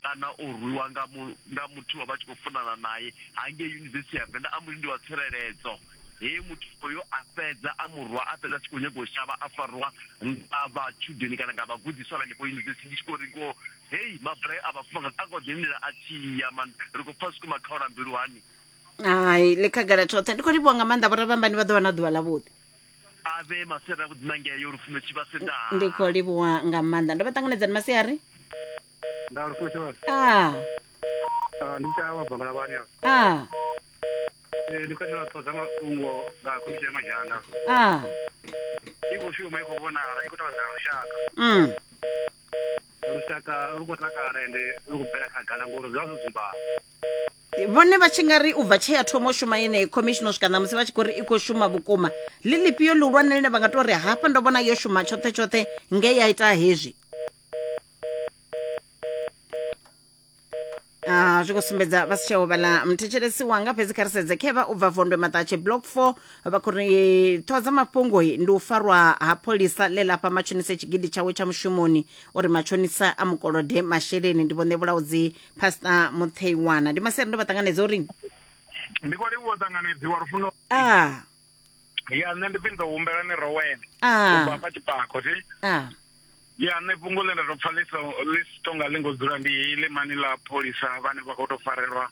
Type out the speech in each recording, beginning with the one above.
kana o rwiwa nga mu, nga muthu wa vha tshi khou funana naye hangei yunivesithi ya Venḓa a mbo ri ndi wa tsireledzo he muthu oyo a fhedza a murwa a fhedza a tshi khou nyaga u shavha a farwa nga vhatshudeni kana nga vhagudiswa vhenefho yunivesithi ndi tshi khou ri ngo hei mabulayo a vhafumakadzi a khou ḓi lindela a tshi ya man ri khou pfa zwikuma khaula mbilu hani hai ḽi khagala tshoṱhe ndi khou livhuwa nga maanḓa vhorabambani vha ḓo vha na ḓuvha ḽavhuḓi a vhe masere a vhuḓi na ngeyo lufuno tshivhase ndaa ndi khou livhuwa nga maanḓa ndo vha ṱanganedzani masiari nda ri futhi vha a ah, ndi tsha wa bangala vhani a a Eh, ndi katela ṱoḓa mafhungo nga komiti ya madzhanga a i khou shuma i khou vhonala i khou tevhedzela lushaka mm lushaka lu khou takala ende lu khou bvela khagala ngori zwi vha zwo dzumbana vhone vha tshi nga ri u bva tshee ya thoma u shuma yeneyi khomishini u swika ṋamusi vha tshi khou ri i khou shuma vhukuma ḽi ḽifhio ḽihulwane ḽine vha nga tou ri hafha ndo vhona yo shuma tshoṱhe tshoṱhe nge ya ita hezwi Ah, zwi khou sumbedza vha si tsheho vhala muthetshelesi wanga fhedzi kha ri sedze khevha u bva vondwe maṱatshe block four vha khou ri ṱhoho dza mafhungo ndi u farwa ha pholisa ḽe lafha matshonise tshigidi tshawe tsha mushumoni uri matshonisa a mukolode masheleni ndi vhone vhulaudzi pastor mutheiwana ndi masiari ndo vha ṱanganedza uri ndi khou livhuwa ṱanganedziwa lufuno ah ya nṋe ndi pfhi ndo humbela ni rowene ah. ubva hafha tshipako thi ah. ya nṋe fhungo ḽe nda tou pfa ḽi si tonga ḽi ngo dzula ndi heyi ḽimani ḽa pholisa vhane vha khou tou farelwa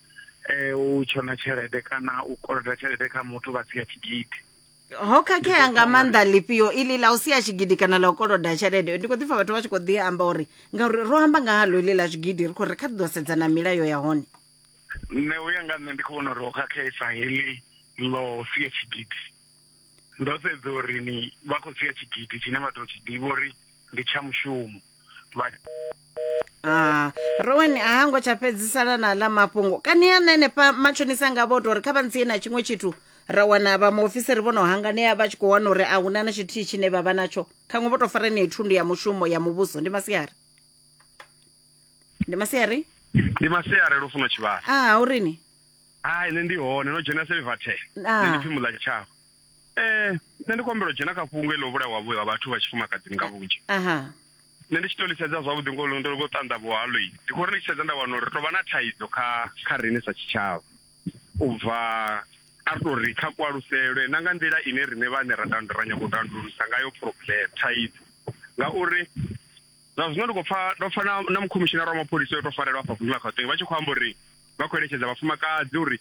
um u tshona tshelede kana u koloda tshelede kha muthu vha sia tshigidi ho khakhea nga maanḓa ḽifhio iḽi ḽa u sia tshigidi kana ḽa u koloda tshelede ndi khou ḓi pfa vhathu vha tshi khou ḓi amba uri ngauri ro amba nga halo iḽi ḽa zwigidi ri khou ri kha ḓi ḓo sedzana milayo ya hone nṋe uya nga nṋe ndi khou vhona uri ho khakhesa heḽi ḽo sia tshigidi ndo sedza uri ni vha khou sia tshigidi tshine vha tou tshi ḓivha uri ndi tsha mushumo vha Ah, rowan a hango tsha fhedzisala na ḽa mafhungo kani ya nenefha matshonisa nga vho tori kha vha ntsie na tshiṅwe tshithu ra wana vha muofisiri vho no hanganea vha tshi khou wana uri a huna na tshithihi tshine vha vha natsho khaṅwe vho tou fara yeneyi thundu ya mushumo ya muvhuso ndi masiari ndi masiari ndi masiari ro funa tshivhasa a u rini hai nṋe ndi hone no dzhena silvertel Ah. nṋe ndi pfi muḽa tshavho eh nṋe ndi kombela u dzhena kha fhungo iḽo vhulawa vhu ha vhathu vha tshifumakadzini nga vhunzhi aha nṋe ndi tshi to lisedza zwavhuḓi ngo ndo ngo ṱanḓavho halo i ndi khou ri ndi tshi sedza nda wana uri ri tovha na thaidzo kha kha riṋe sa tshitshavha u bva a ri to ri kha kualuselwe na nga nḓila ine riṋe vhane ra tandu ra nyanga u tandululisa ngayo problem thaidzo ngauri Zwa zwino ndi khou pfa ndo pfa na na mukhomishinara wa mapholisa yo tou farelwa afha vunḓu ḽa Gauteng vha tshi khou amba uri vha khou eletshedza vhafumakadzi uri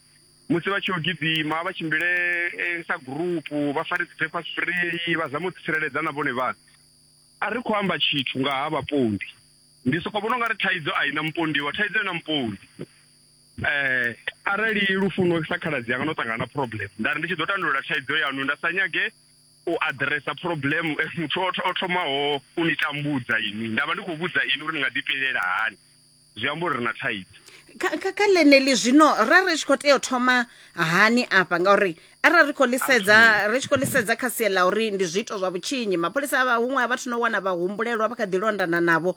musi vha tshi yo gidima vha tshimbile eh, sa gurupu vha fare dzi paper spray vha zame u tsireledza na vhone vhaṋe a ri khou amba tshithu nga ha vhapondi ndi soko vhona ungari thaidzo a ina mupondiwa thaidzo ina mupondi eh arali lufuno sa khaladzi yanga no ṱangana na problem nda ri ndi tshi ḓo tandulula thaidzo yanu nda sa nyage u aḓiresa phuroblemu eh, muthu o thomaho u ni tambudza ini nda vha ndi khou vhudza ini uri ni nga ḓipilela hani zwi amba uri ri na thaidzo kha ḽeneḽi zwino ra ri tshi khou tea u thoma hani afha ngauri arali ri khou ḽisedza ri tshi khou ḽisedza kha sia ḽa uri ndi zwiito zwa vhutshinyi mapholisa a huṅwe a vhathu no wana vha humbulelwa vha kha ḓi londana navho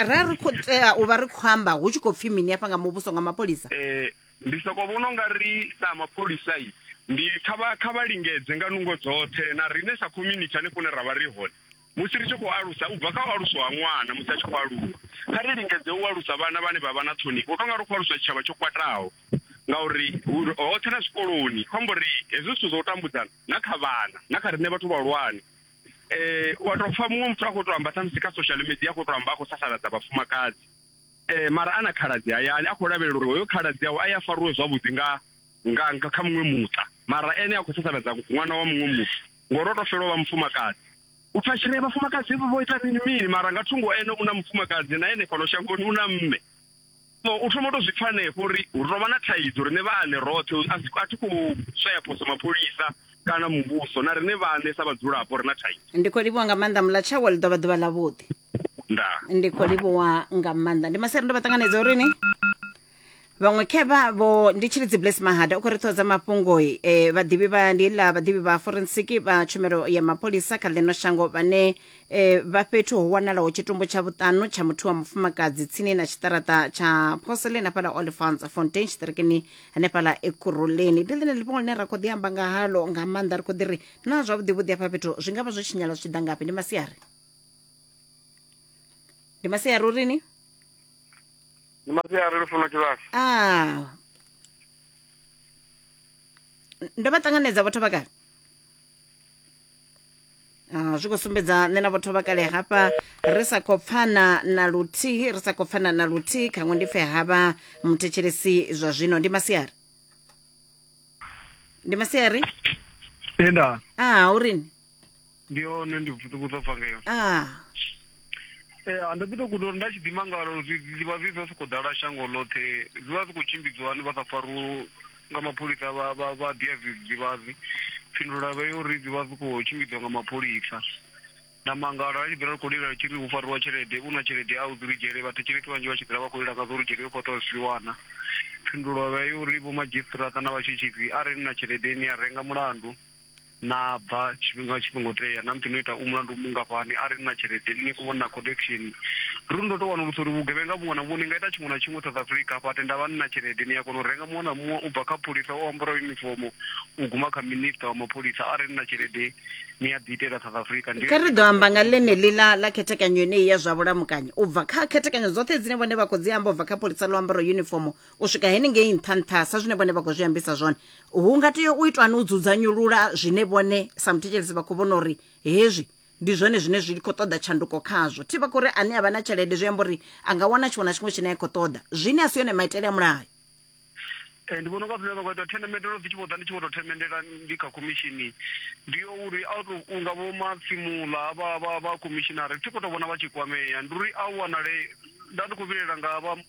ra ri khou tea u vha ri khou amba hu tshi khou pfhi mini afha nga muvhuso nga mapholisa um Ndi sokou vhona u nga ri sa mapholisa ndi kha vha kha vha lingedze nga nungo dzoṱhe na riṋe sa community hanefho hune ra vha ri hone musi ri tshi khou alusa u bva kha u aluswa ha ṅwana musi a tshi khou aluwa kha ri lingedze u alusa vhana vhane vha vha na ṱhonifho u tou nga ri khou aluswa tshitshavha tsho kwataho ngauri hoṱhe na zwikoloni khou amba uri hezwi zwithu zwa u tambudzana na kha vhana na kha riṋe vhathu vhahulwane um wa tou pfha muṅwe muthu a khou tou amba khamusi kha social media a khou tou amba a khou sasaladza vhafumakadzi Eh, mara ana khaladzi hayani a khou lavhelela uri hoyo khaladzi awe a ya faruwe zwavhuḓi nga nga nga kha muṅwe muṱa mara ene a khou sasaladza ṅwana wa muṅwe muthu ngori o to fela u vha mufumakadzi u pfa tshire vhafumakadzi vho ita mini mini mara nga thungo ene u na mufumakadzi na ene fhano shangoni u na mme so u thoma u to zwi pfa hanefho uri hu tovha na thaidzo rine vhaane roṱhe a thi khou swaya phoso mapholisa kana muvhuso na rine vhane sa vhadzulapo ri na thaidzo ndi khou livhuwa nga maanḓa mulatshawa ḽi ḓovha ḓuvha ḽavhuḓi ndaa ndi khou livhuwa nga maanḓa ndi masere ndo vha ṱanganedza uri ni vhaṅwe khevha vho ndi tshili dzi bless mahada u khou ri ṱhoho dza mafhungoi um vhaḓivhi vha ndi ḽa vhaḓivhi vha forensic vha tshumelo ya mapholisa kha ḽino shango vhane um vha fhethu ho wanalaho tshitumbu tsha vhuṱanu tsha muthu wa mufumakadzi tsini na tshiṱaraṱa tsha porcelain hafhala olifants fontain tshiṱirikini hanefhala ekuruleni ndi ḽine ḽifhungo ḽine ra khou ḓi amba nga halo nga maanḓa ri khou ḓi ri na zwavhuḓi vhuḓi afha fhethu zwi nga vha zwo tshinyala zwi tshi ḓa ngafhi ndi masiari ndi masiari urini ndi masiari lufuno tshivhasa a ndo vha ṱanganedza vhathu vhakale Ah, zwi khou sumbedza nṋe na vhotho vha kale hafha ri sa khou pfana na luthihi ri sa khou pfana na luthihi khaṅwe ndi pfe havha muthetshelesi zwa zwino ndi masiari ndi masiari tenda a ah, urini ndi hone ndi vhuṱukuzwa pfangeyo a ah. ndo ḓi to guda uri nda tshi ḓima ngalo zwivha zwi zwa sokou ḓala shango ḽoṱhe zwi vha zwi khou tshimbidziwa hani vha sa fariwo nga mapholisa vha dia zwidzidzivhadzi phindulo vha yo uri zwi vha zwi khou tshimbidziwa nga mapholisa na mangala a tshi ḓira ri khou lila tshi ri hu fariwa tshelede u na tshelede a u dzi ludzhele vhathetshelesi vhanzhi vha tshi ḓira vha khou lila nga zwo ludzhele u khou tea zwi wana phindulo vha yo uri vho madzhisiṱiraṱa na vhatshutshisi a re na tshelede ine ya renga mulandu Na bva tshifhinga tshi songo tea namusi no ita u mulandu mungafhani arali ni na tshelede ni kho vhona connection ruri ndo to wanulusa uri vhugevhenga vhuṅwe na vhuṅwe ni nga ita tshiṅwe na tshiṅwe South Africa hafha tenda vha ni na tshelede ni a kona u renga muṅwe na muṅwe u bva kha pholisa o ambara yunifomo u guma kha minister wa mapholisa arali ni na tshelede ni a ḓi itela South Africa ndi kha ri ḓo amba nga ḽeneḽi ḽa ḽa khethekanyo yeneyi ya zwa vhulamukanyi u bva kha khethekanyo dzoṱhe dzine vhone vha khou dzi amba u bva kha pholisa ḽo ambara yunifomo u swika henengei nṱha nṱha sa zwine vhone vha khou zwi ambisa zwone hu nga tea u itwani u dzudzanyulula zwine vhone sa muthetshelesi vha khou vhona uri hezwi ndi zwone zwine zwi khou ṱoḓa tshanduko khazwo thi vha khou ri ane a vha na tshelede zwi amba uri a nga wana tshiṅwe na tshiṅwe tshine a khou ṱoḓa zwine a si yone maitele a mulayo ndi vhona unga zwine vha khou ita themendelo dzi tshi vho ḓa ndi tshi vho tou themendela ndi kha khomishini ndi yo uri a to unga vho matsimula vha vha vha khomishinari thi khou tou vhona vha tshi kwamea ndi uri a wanale nda ndi khou vhilela nga vha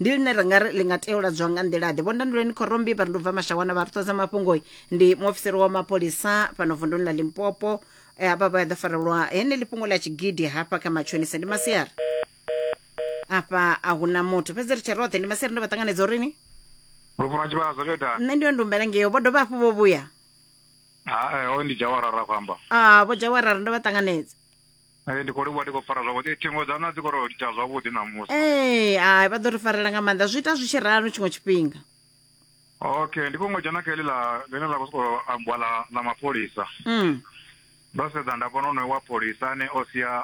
ndi ḽine ri nga ri ḽi nga tea u ladzwa nga nḓila-ḓe vho ndanduleni khorombi vha ri ndi bva mashawana vha ri ṱoḓa mafhungo ndi muofisiri wa mapholisa fhano vunduni ḽa limpopo Eh, havha vha ya ḓo farelwa heneḽi fhungo ḽa tshigidi hafha kha matshonisa ndi masiari afha a hu na muthu fhedzi ri tshe roṱhe ndi masiari ndo vha ṱanganedza uri ni Lufuna tshivhadzo tsho itani? nṋe ndi yo ndumbela ngeyo vho dovha hafhu vho vhuya Ha eh hoyu ndi Jawara ra khou amba. a vho jawarara ndo vha ṱanganedza Ee, ndi khou livhuwa ndi khou fara zwavhuḓi thingo dza na dzi khou ri litsha zwavhuḓi ṋamusi ee hai vha ḓo ri farela nga maanḓa zwi ita zwi tshi ralo tshiṅwe tshifhinga okay ndi khou ngo dzhena kha heḽi ḽa ḽine ḽa khou sokou ambiwa ḽa ḽa mapholisa Mm. ndo sedza nda vhona onoyo wa pholisa ane o sia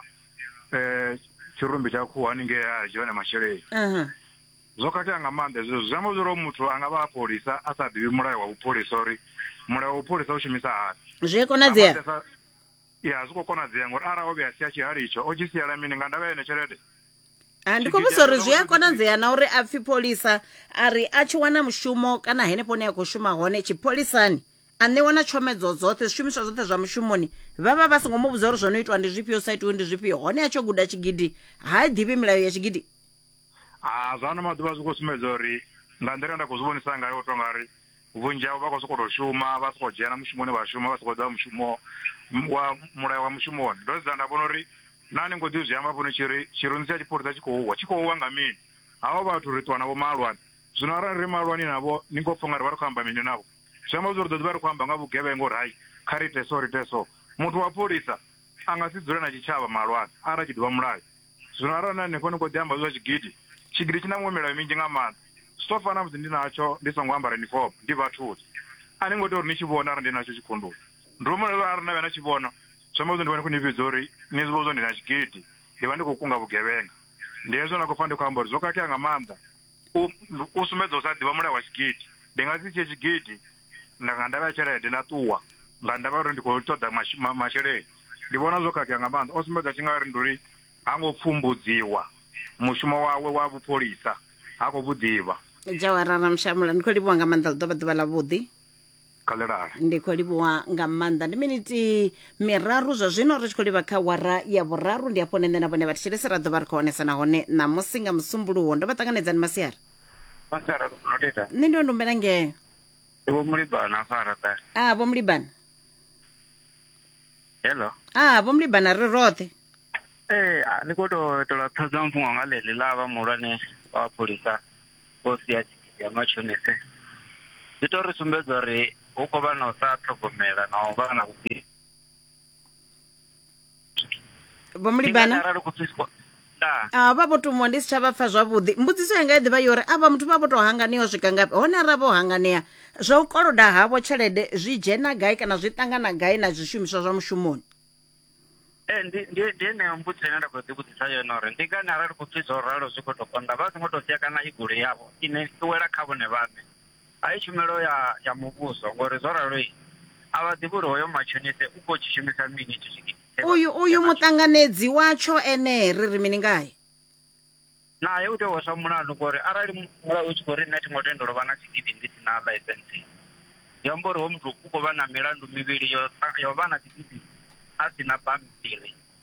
um tshirumbi tsha khuhu haningei a dzhia one masheleni Aha. zwo khakhea nga maanḓa hezwo zwi amba zwori hoyu muthu a nga vha a pholisa a sa ḓivhi mulayo wa vhupholisa uri mulayo wa vhupholisa u shumisa hani zwi a Nga konadzea maanḓesa- ya a zwi khou konadzea ngori arali o vhe a sia tshihali itsho o tshi siela mini nga ndavha ya yone tshelede a ndi khou vhusa uri zwi a konadzea na uri a pfhi pholisa a ri a tshi wana mushumo kana henefho ne a khou shuma hone tshipholisani a ṋewa na tshomedzo dzoṱhe zwishumiswa zwoṱhe zwa mushumoni vha vha vha songo mu vhudza uri zwo no itwa ndi zwifhio sa itiwe ndi zwifhio hone a tsho guda tshigidi ha i ḓivhi milayo ya tshigidi ha zwa ano maḓuvha zwi khou sumbedza uri nga nḓila nda khou zwi vhonisa ngayo u tonga ri vhunzhi havho vha khou sokou tou shuma vha sokou dzhena mushumoni vha shuma vha sokou ḓa mushumo wa mulayo wa mushumoni ndo sedza nda vhona uri na ni ngo ḓi zwi amba fhano tshi ri tshirunzi tsha tshipholisa tshi khou wa tshi khou wa nga mini havho vhathu ri ṱuwa navho malwani zwino arali ri malwani navho ni ngo pfha nga ri vha ri khou amba mini navho zwi amba zwo ri ḓo ḓi vha ri khou amba nga vhugevhengo uri hai kha ri ite so ri ite so muthu wa pholisa a nga si dzule na tshitshavha malwani arali tshi ḓivha mulayo zwino arali na hanefho ni khou ḓi amba zwa tshigidi tshigidi tshi na muṅwe milayo minzhi nga maanḓa zwi tou fana musi ndi natsho ndi songo ambara uniform ndi vhathuni a ni ngo tea uri ni tshi vhona arali ndi natsho tshikhunduni ndi uri mulayo arali na vhe na tshi vhona zwi amba zwo ndi vha ni khou ni vhidza uri ni zwi vhona zwo ndi na tshigidi ndi vha ndi khou kunga vhugevhenga ndi hezwo na khou pfa ndi khou amba uri zwo khakhea nga maanḓa u u sumbedza u sa ḓivha mulayo wa tshigidi ndi nga si tshie tshigidi nga nga ndavha ya tshelede na ṱuwa nga ndavha uri ndi khou ṱoḓa masheleni ndi vhona zwo khakhea nga maanḓa o sumbedza tshi nga ri ndi uri ha ngo pfumbudziwa mushumo wawe wa vhupholisa ha khou vhuḓivha jawara ramshamula ndi khou livhuwa nga maanḓa ḽi ḓo vha ḓuvha ḽa vhuḓi khalelale ndi khou livhuwa nga maanḓa ndi miniti miraru zwa zwino ri tshi khou livha kha wara ya vhuraru ndi hafho nṋe na vhone vha thetshelese ra ḓovha ri khou honesa nahone ṋamusi nga musumbuluwo ndo vha ṱanganedzani masiari masiari noteta nṋe ndi wa ndumbela ngeo Ndi vho mulibana afha arata. Ah, vho mulibana. Hello. Ah, vho mulibana ri roṱhe. Eh, ah, ni khou tou tola ṱhoḓa mfhungo nga ḽeḽi ḽa vha muhulwane wa pholisa vho sia tshigidi ya mashonise. Zwi tou ri sumbedza uri hu khou vha na u sa ṱhogomela na u vha na vhuḓi. vho mulibana arali ku pfi spo- nda Ah, vha vho tumiwa ndi si tsha vha pfa zwavhuḓi mbudziso yanga i ḓivha yo uri avha muthu vha vho tou hanganea u swika ngafhi hone arali vho hanganea zwa u koloda havho tshelede zwi dzhena gai kana zwi ṱangana gai na zwishumiswa zwa mushumoni Eh, ndi ndi ndi eneyo mbudziso ine nda khou ḓi vhudzisa yone uri ndi ngani arali ku pfi zwo ralo zwi khou tou konḓa vha songo tou sia kana i goloi yavho ine i wela kha vhone vhaṋe A i tshumelo ya ya muvhuso ngori zwo ralo a vha ḓivhi uri hoyo matshonise u khou tshi shumisa mini itsho tshigidi. Uyu uyu muṱanganedzi watsho ene ri ri mini ngae? Nae u tea u hweswa mulandu ngori arali mulayo u tshi khou ri nṋe thi ngo tendelwa vha na tshigidi ndi si na ḽaisentse zwi amba uri hoyu muthu u khou vha na milandu mivhili yo yo vha na tshigidi a si na bammbiri.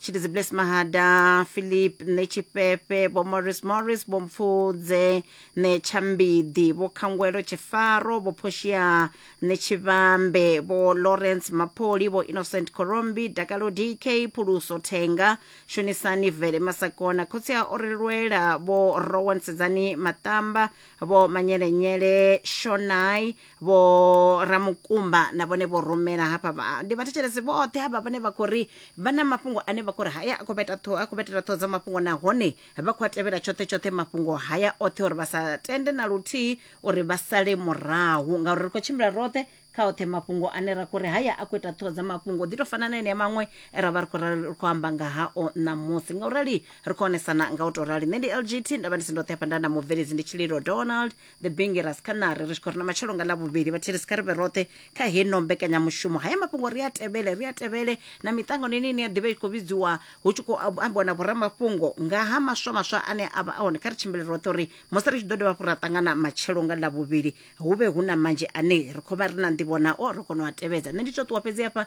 chilizi bless mahada philip nechiphepe vho morris morris vho mpfudze nechambidi vho khangwelo tshifaro vho phoshia nechivhambe vho lawrence mapoli vho innocent corombi dakalo dk phuluso thenga shonisani vele masakona khotsi a orilwela vho rowan sedzani maṱamba vho manyelenyele shonai vho ramukumba na vhone vho rumela hafha vha- ndi vhathetshelesi vhoṱhe havha vhane vha khou ri vha na mafhungo ane vha khou ri haya a khou vheta ṱhoho a khou vhetela ṱhoho dza mafhungo nahone vha khou a tevhela tshoṱhe tshoṱhe mafhungo haya oṱhe uri vha sa tende na luthihi uri vha sale murahu ngauri ri khou tshimbila roṱhe kha oṱhe mafhungo ane ra khou ri haya a khou ita ṱhoho dza mafhungo ḓi tou fana na enea maṅwe e ra vha ri khou rali- ri khou amba nga hao ṋamusi nga u rali ri khou onesana nga u tou rali nṋe ndi lgt nda vha ndi si ndoṱhe hafha nda na mubveledzi ndi tshililo donald the bengeras kha nari ri tshi khou ri na matshelo nga ḽa vhuvhili vhathihi ri si kha ri vhe roṱhe kha heno mbekanyamushumo haya mafhungo ri a tevhele ri a tevhele na miṱangano ine ine ya ḓivha i tshi khou vhidziwa hu tshi khou ab- ambiwa na vhoramafhungo nga ha maswa maswa ane a vha a hone kha ri tshimbile roṱhe uri musi ri tshi ḓo dovha hafhu ra ṱangana matshelo nga ḽa vhuvhili hu vhe hu na manzhi ane ri khou vha ri na nḓivho nao ri kone u a tevhedza nṋe ndi tou ṱuwa fhedzi hafha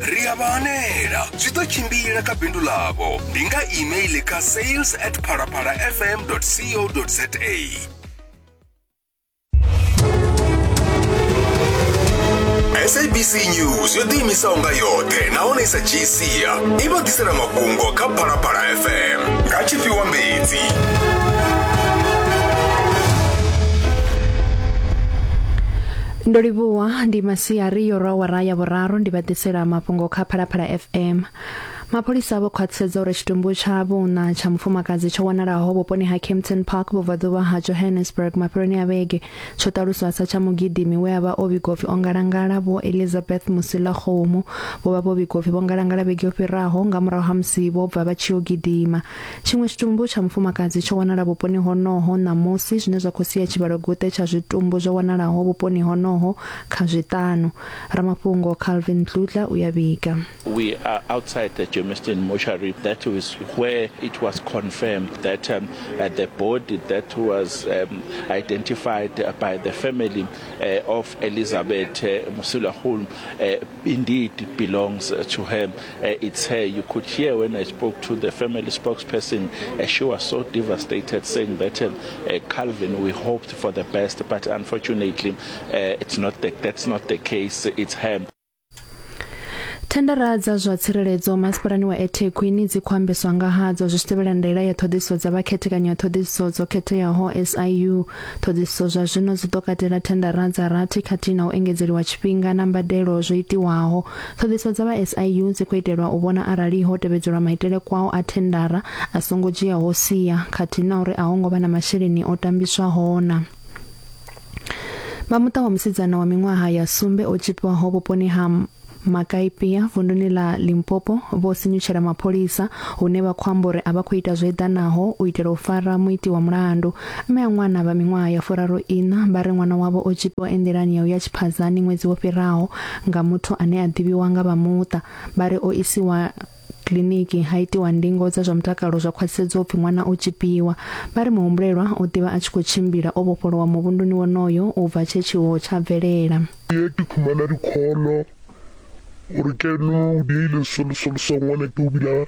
ri a vha hanela zwi ḓo tshimbila kha bindu ḽavho ndi nga email kha sales at phalaphala fm co za sabc news yo ḓiimisaho nga yoṱhe nahone i sa dzhii sia i vha ḓisela mafhungo kha phalaphala fm nga tshifhiwa mbedzi Ndo livhuwa ndi masiari yo rwa wara ya vhuraru ndi vha ḓisela mafhungo kha Phalaphala FM. Mapholisa vho khwaṱhisedza uri tshitumbu tsha vhuna tsha mufumakadzi tsho wanalaho vhuponi ha Kempton Park vhubvaḓuvha ha Johannesburg mafheloni a vhege tsho ṱaluswa sa tsha mugidimi we a vha o vhigwa upfi o ngalangala Vho Elizabeth Musilakgomo vho vha vho vhigwa upfi vho ngalangala vhege yo fhiraho nga murahu ha musi vho bva vha tshi yo gidima. Tshiṅwe tshitumbu tsha mufumakadzi tsho wanala vhuponi honoho ṋamusi, zwine zwa khou sia tshivhalo-guṱe tsha zwitumbu zwo wanalaho vhuponi honoho kha zwiṱanu. Ramafhungo Calvin Dludla u a vhiga. We are outside the Germiston mortuary that is where it was confirmed that um, uh, the body that was um, identified by the family uh, of Elizabeth uh, Musilahulu uh, Indeed it belongs uh, to her. Uh, it's her. You could hear when I spoke to the family spokesperson, uh, she was so devastated saying that, uh, uh, Calvin, we hoped for the best, but unfortunately, uh, it's not the, that's not the case. It's her. thendara dza zwa tsireledzo masipalani wa ethekwini dzi khou ambeswa nga hadzo zwi tshi tevhela ndaela ya ṱhoḓisiso dza vhakhethekanyo ya ṱhoḓisiso dzo khetheaho siu Ṱhoḓisiso zwa zwino dzi ḓo katela thendara dza rathi khathihi na u engedzeliwa tshifhinga na mbadelo zwo itiwaho. Ṱhoḓisiso dza vha SIU dzi khou itelwa u vhona arali ho tevhedzelwa maitele kwao a thendara a songo dzhiaho sia khathihi na uri a ho ngo vha na masheleni o tambiswaho na. Vha muṱa wa musidzana wa miṅwaha ya sumbe o tzhipiwaho vhuponi ha makaipia vunduni ḽa limpopo vho sinyutshela mapholisa hune vha khou amba uri a vha khou ita zwo eḓanaho u itela u fara muiti wa mulandu mme a ṅwana vha miṅwaha ya furaru ina vha ri ṅwana wavho o tshipiwa enḓilani ya u ya tshiphadzani ṅwedzi wo fhiraho nga muthu ane a ḓivhiwa nga vha muṱa vha ri o isiwa kiliniki ha itiwa ndingo dza zwa mutakalo zwa khwaṱhisedzo upfi ṅwana o tshipiwa vha ri muhumbulelwa o ḓivha a tshi khou tshimbila o vhofholowa muvhunduni wonoyo u bva tshe tshiwo tsha bvelela ye ke khumana dikholo gore ke no diile solosolosoangwane ke o bila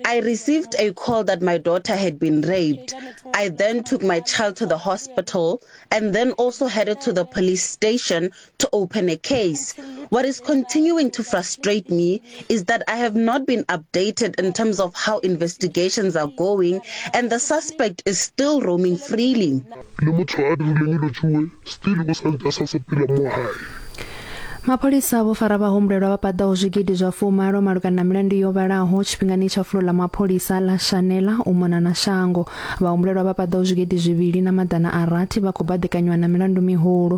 I received a call that my daughter had been raped. I then took my child to the hospital and then also headed to the police station to open a case. What is continuing to frustrate me is that I have not been updated in terms of how investigations are going and the suspect is still roaming freely. mapholisa vho fara vhahumbulelwa vha paḓaho zwigidi zwa fumalo malugana na milandu yo vhalaho tshifhingani tsha fulo ḽa mapholisa ḽa shanela u mona na shango vhahumbulelwa vha paḓaho zwigidi zwivhili na maḓana a rathi vha khou baḓekanywa na milandu mihulu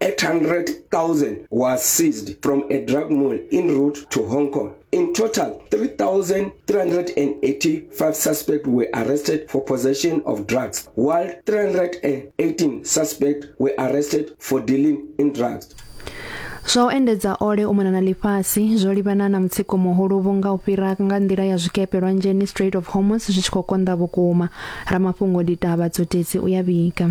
800,000 were seized from a drug mall en route to Hong Kong. In total, 3,385 suspects were arrested for possession of drugs, while 318 suspects were arrested for dealing in drugs. zwa u endedza ole u mona na ḽifhasi zwo livhana na mutsiko muhulu vhunga u fhira nga nḓila ya zwikepe lwanzheni strait of hormos zwi tshi khou konḓa vhukuma ramafhungo ditaba dzotedzi u ya vhiga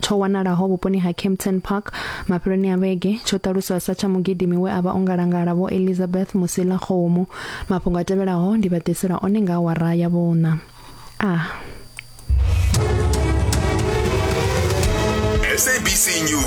tsho wanalaho vhuponi ha Kempton Park mafheloni a vhege tsho ṱaluswa sa tsha mugidimi we a vha o ngalangala vho Elizabeth Musila Khomo mafhungo a tevhelaho ndi vha ḓisela one nga awara ya vhuṋa a ah. SABC News